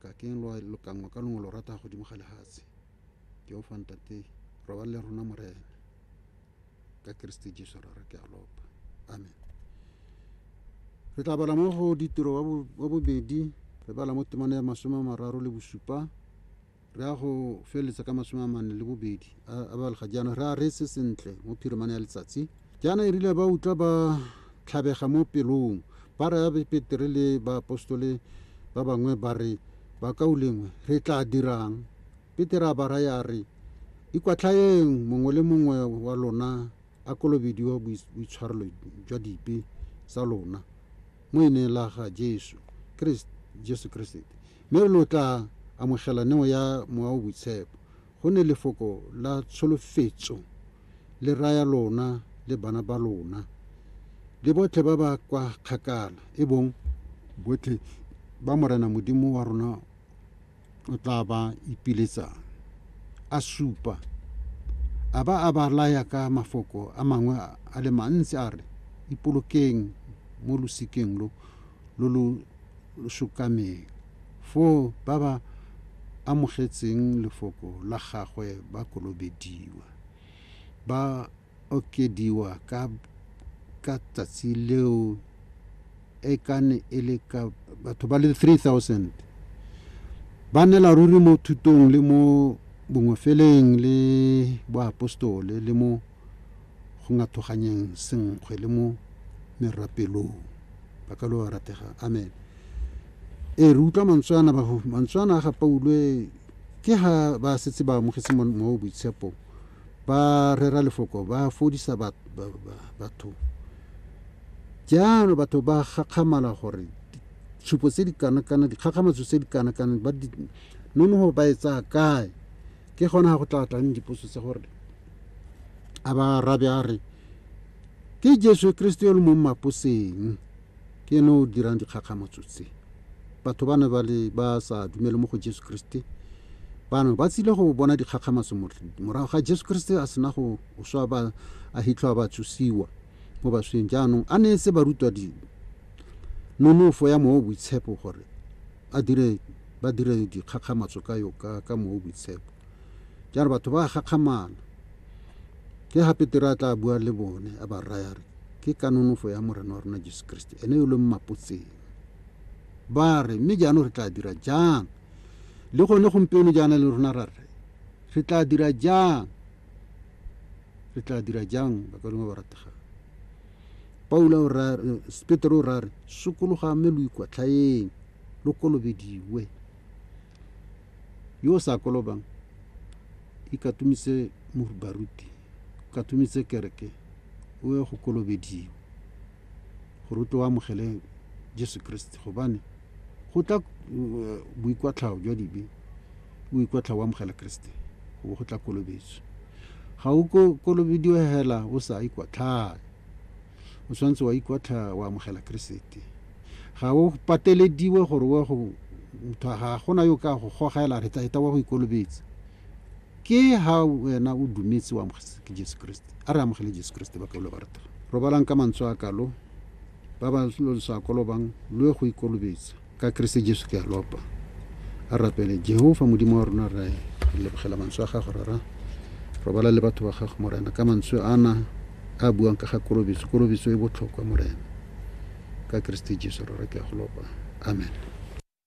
Ka keng lwa lokanngwa ka longwe lorata godimo ga lehatshe? Jehova Ntate, robala le rona Morena. Ka Keresete Jesu Rara ke a lopa. Amen. Re tla bala mo go ditiro wa bo- wa bobedi, re bala mo temana ya masome a mararo le bosupa, re ya go feleletsa ka masome a mane le bobedi a a balega jaana re a reetse sentle mo phirimane ya letsatsi Jaana e rile ba utlwa ba tlhabega mo pelong, ba raya Petere le baapostole ba bangwe ba re, Bakaulengwe, re tlaa dirang? Petere a ba raya a re, Ikwatlhayeng mongwe le mongwe wa lona a kolobediwa boitshwarelo jwa dipe tsa lona mo ineng la ga Jesu Jesu Keresete, mme lo tlaa amogela neo ya Mowa o Boitshepo. go ne lefoko la tsholofetso le raya lona le bana ba lona, le botlhe ba ba kwa kgakala, e bong botlhe ba Morena Modimo wa rona o tla ba ipiletsang. A supa, a ba a ba laya ka mafoko a mangwe a le mantsi a re, Ipolokeng mo losikeng lo lo lo sokameng. Foo ba ba amogetseng lefoko la gagwe ba kolobediwa, ba okediwa ka ka tsatsi leo e ka ne e le ka batho ba le 3000 ba nela ruri mo thutong le mo bongofeleng le boapostole le mo go ngathoganyeng senkgwe le mo merapelong. Ba ka lo a ratega. Amen. Ee, re utlwa mantswe ana, mantswe ana a ga Paulo e ke ha ba setse ba amogetse mowa o boitshepo ba rera lefoko ba fodisa batho jaano batho ba gakgamala gore tshupo tse di kana-kana dikgakgamatso tse di kana-kana ba nonogo ba e tsaya kae ke gona ga go tla tlang dipotso tsa gore a ba arabe a re ke jesu kriste yo le mo mmaposeng ke ene o dirang dikgakgamotso tse batho ba ne ba le ba sa dumele mo go jesu kriste bano ba tsile go bona dikgakgamatso morago ga jesu kriste a sena go swa ba a hitlho a ba tsusiwa mo basweng jaanong a ne se barutwa di nonofo ya moo boitshepo gore a dire ba dire dikgakgamatso ka yo ka ka moo boitshepo Ke a re batho ba a gakgamala. Ke ga Petere a tla bua le bone, a ba raya a re, Ke ka nonofo ya Morena wa rona Jesu Keresete, ene yo lo mmapotseng. Ba re, Mme jaanong re tla dira jang? Le gone gompieno jaana le rona ra re, Re tla dira jang? Re tla dira jang, bakalengwe ba rategang? Paulo o ra, Petere o ra re, Sokologa mme lo ikwatlhaeng, lo kolobediwe. Yo o sa kolobang, ikatumise baruti, katumise kereke, o ye go kolobediwa, gore o tle o amogele Jesu Kriste, gobane go tla boikwatlhao jwa dibe, o ikwatlhao o amogela Kriste, go bo go tla kolobetso. Ga o kolobediwe hela o sa ikwatlhae, o tshwanetse wa ikwatlha wa amogela Keresete. Ga o patelediwe gore o ye go motho, ga gona yo ka go goga ela re taeta wa go ikolobetse. Ke ha wena o dumetse o amogetse ke Jesu Keresete. A re amogele Jesu Keresete ba kaulwa ba ratana. Robalang ka mantswe a kalo, ba ba lo lo sa kolobang lo ye go ikolobetsa. Ka Keresete Jesu ke a lopa. A rapele. Jehofa, Modimo wa rona, re lebogela mantswe a gago, Rara. Robala le batho ba gago, Morena, ka mantswe ana a buang ka ga kolobetso. Kolobetso e botlhokwa, Morena. Ka Keresete Jesu, Rara, ke a go lopa. Amen.